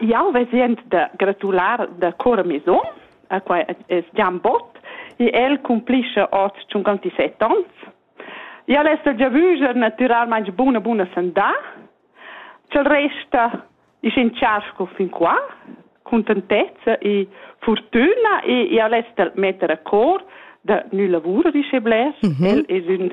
Jau vesend da gratular da cor a mes um, quai es Gian Bott, e el cumplischa hoz 57 ans. El es da giavüger natüralmaing buna buna sandà. Ch'el resta isch in charsko fin qua, contentezza e fortüna e el es da metter a cor da nü lavur, disch e blers. Mhm. El es ün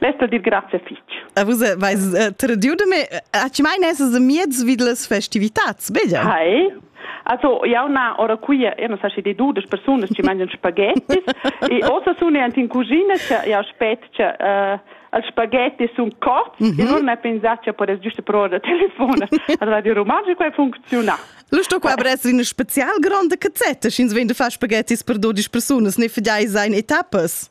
Lesto dir grazie fitch. A vus vais uh, tradiu de me, a ci mai nesas miez vid las festivitats, bella? Hai. Also, ja una ora qui io non sa si di dudes personas ci mangian spaghettis e ossa sono anche in cucina che io aspetto che uh, els spaghetti sono corti mm -hmm. e non ne pensate che podes giusto provare da telefone a Radio Romanzo qua funziona. Lusto qua bress in spezial grande cazzetta, sch'ins vende fa spaghettis per 12 personas, ne fidai sein etappas.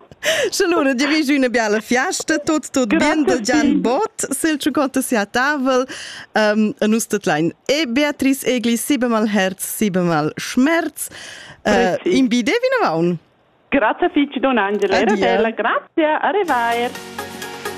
Allora dirigi una bella fiesta, tot tot bien del Jan Bot, sil ciucotta sia tavel, um, a nus tot lein. E Beatrice Egli, si bemal herz, si bemal schmerz, uh, in bide vino vaun. Grazie fitch, Don Angela, era bella, grazie, arrivaier.